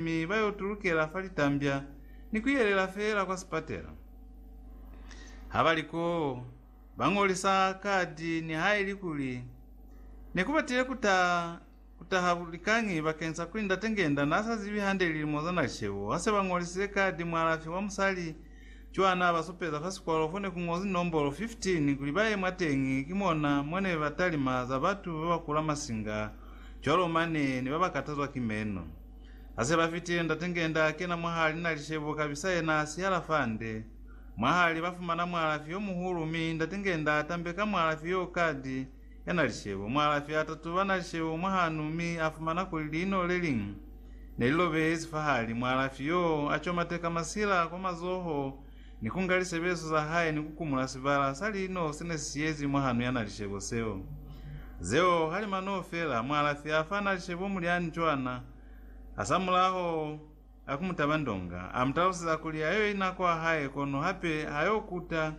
mi ba yo tulukela fa litambya ni ku yelela feela kwa sipatela. Ha ba li koo, ba ñolisa kadi nihalikuli ne ku batile ku ta ku taha likañi bakeng sa kuli Ndate Ngenda n'a sa zibi hande lilimo za na li shebo. Ha se ba ñolisile kadi, mualafi wa musali cw'a n'a ba supeza fa sikwalo fo ne ku ñozi nombolo 15 kuli ba ye mwateñi, ki mona mo ne ba talima za batu ba ba kula masinga cwalo mane ne ba ba katazwa ki meno. Hase ba fitile, Ndate Ngenda a kena mwahali na lishebo kabisa yena a sihala fande. Mwahali ba fumana mualafi yo muhulu mi Ndate Ngenda a tambeka mualafi yoo kadi ya na lishebo. Mualafi a tatuba na lishebo mwahanu mi a fumana kuli liino le liñwi ne li lobehezi fahali. Mualafi yoo a comateka masila kwa mazoho ni ku nga lisebezo za hae ni ku kumula sibala sa lino se ne si siyezi mwa hanu ya na lishebo seo. Zeo ha li mano fela, mualafi a fa na lishebo mulyani cwana, hasamulaho a ku mu taba ndonga, a mu taluseza kuli ha yo ina kwa hae kono hape ha yo kuta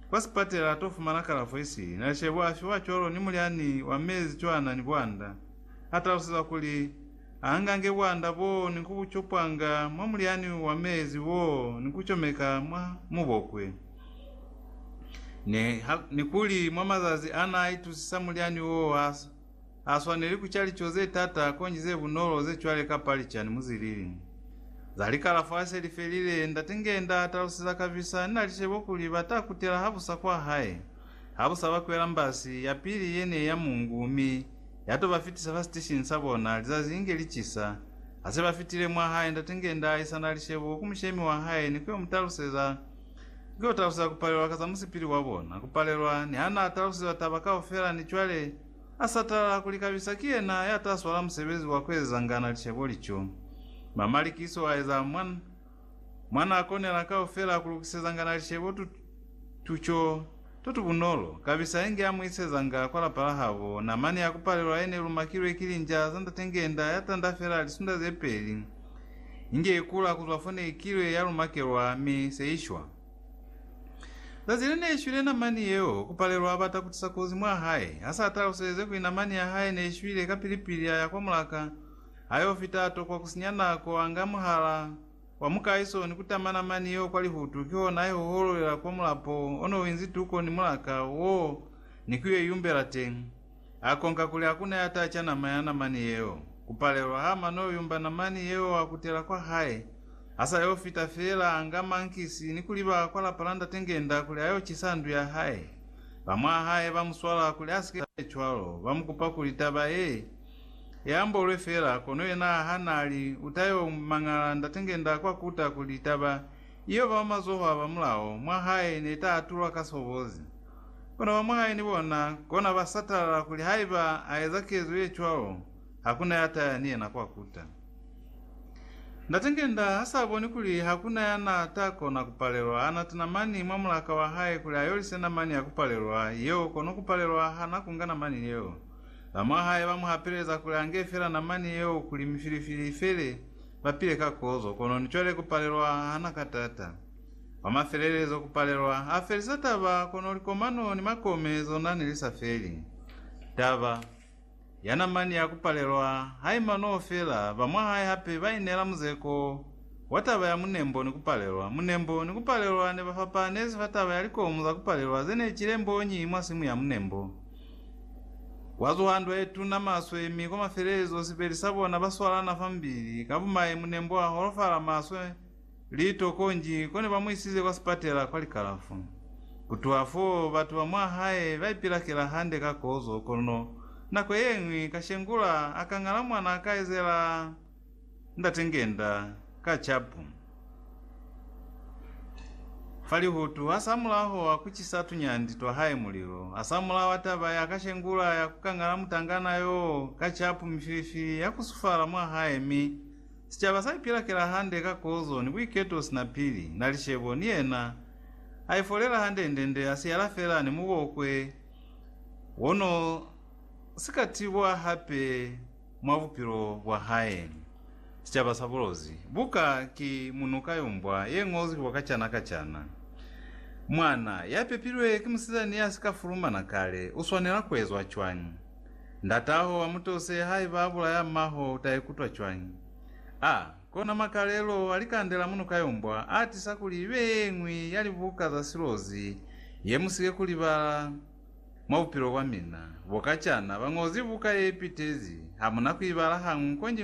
kwa sipatela a to fumana kalafo isili na lishebo a fiwa cwalo ni mulyani wa mezi cwana ni bwanda, a talusezwa kuli, Angange bwanda boo ni kubucopanga mwa mulyani wa mezi woo ni kucomeka mwa mubokwe. Ni, ha, ni kuli mwa mazazi ana aitusisa mulyani woo ha, ha swaneli kuca lico ze tata konji ze bunolo ze cwale kapa licani muzilili. Za likalafo hase li felile, Ndate nge nda taluseza kabisa, ni na licebo kuli ba ta kutela habusa kwa hae. Habusa ba kwela mbasi yapili yene ya mungu, mi ya to ba fitisa fa siteshini sa bona lizazi inge li cisa. Ha se ba fitile mwa hae, Ndate Ngenda a isana lishebo ku mushemi wa hae ni ku yo mu taluseza, ni ku yo taluseza ku palelwa ka za musipili wa bona, ku palelwa, ni ha n'a talusizwa taba kaufela, ni cwale a sa tala kuli kabisa ki yena ya ta swala musebezi wa ku ezezangana lishebo lico. Mamalikiso a eza mwa. Mwa nako nela kaufela kulukisezangana licebo tu, tuco to tubunolo kabisa inge amuisezanga kwa lapa la habo, namani ya kupalelwa yene lumakilwe ki linja za ndate ngenda ya tanda fela lisunda ze peli, inge ikula kuzwa fo neikilwe ya lumakelwa mi se ishwa. Zazi le neishwile namani yeo, kupalelwa abata kutisa kozi mwa hae, hasa ataluseleze kuli namani ya hae neishwile kapili-pili aya kwa mulaka, Ha yo fita to kwa ku sinya nako, a nga muhala wa mukaiso ni ku tama namani yeo kwa lihutu, kihona a i hohololela kwa mulapo o ne u inzi tuko ni mulaka woo ni ku yo i yumbela teñi. A konka kuli ha ku na ya taca nama ya namani yeo. Ku palelwa ha mano yo yumba namani yeo a kutela kwa hae. Ha sa yo fita feela, a nga mankisi ni ku liba kwa lapa la Ndate Ngenda kuli a yo cisa ndu ya hae. Ba mwa hae ba mu swala kuli a si ke a ye cwalo, ba mu kupa kuli taba ye Ye ambolwe fela, kono yena ha na li, U ta yo mangala Ndate nge nda kwa kuta kuli taba iyo ba mazoho a ba mulao mwa hae ne ta atulwa ka sobozi. Kono ba mwa hae ni bona kona ba satalala kuli haiba a eza kezo ye cwalo, ha ku na ya ta ya ni yena kwa kuta. Ndate nge nda ha sa boni kuli ha ku na ya na ta kona ku palelwa, a nata namani mwa mulaka wa hae kuli a yolise namani ya ku palelwa yeo, kono ku palelwa ha na ku nga namani yeo. Bamwahae ba mu hapeleza kuli ange fela namani yeo kuli mifilifili ifele, ba pile ka kozo, kono ni cwale ku palelwa ha na ka tata. Kwa mafelelezo, ku palelwa ha felisa taba, kono likomano ni makome zona ne li sa feli. Taba ya namani ya ku palelwa ha i manoo fela, bamwahae hape ba ineela muzeko wa taba ya munembo ni ku palelwa. Munembo ni ku palelwa ne ba fapahanezi fa taba ya likomu za ku palelwa ze ne cile mbonyi mwa simu ya munembo. Kwa zuha ndwa ye tuna maswe, mi kwa mafelelezo sibeli sa bona ba swalana fa mubili. Ka bumai, munembo wa holofala maswe li toko nji, kone ba mu isize kwa sipatela kwa likalafu. Ku tuha fo, batu ba mwa hae ba ipilakela hande ka kozo, kono nako ye ñwi, kashengula a ka ñala mwana a ka ezela. Ndate ngenda ka capu fa lihutu, asamulaho wa kucisa tunyandi twa hae mulilo, asamulaho wa taba ya kashengula ya kukangala mutangana yoo ka capu mifilifili ya kusufala mwa hae, mi sicaba sa ipilakela hande ka kozo ni buiketo sina pili, na licebo, ni yena aifolela handendende, asiyala fela ni mubokwe wono sikatibwa hape. Mwa bupilo bwa hae, sicaba sa bulozi buka ki munuka yo mbwa ye ngozwi kwa kacana kacana. Mwana ya pepilwe ki musizani ya si ka fulumana kale u swanela ku ezwa cwañi? Ndat'aho a mu tose haiba a bulaya m'aho u ta ikutwa cwañi? A kona makalelo a likande la munuka yo mbwa a tisa kuli i be ye ñwi ya libuka za silozi ye mu si ke ku libala. Mwa bupilo bwa mina bokacana, bañozi buka ye pitezi, hamuna kuibala hañwi konji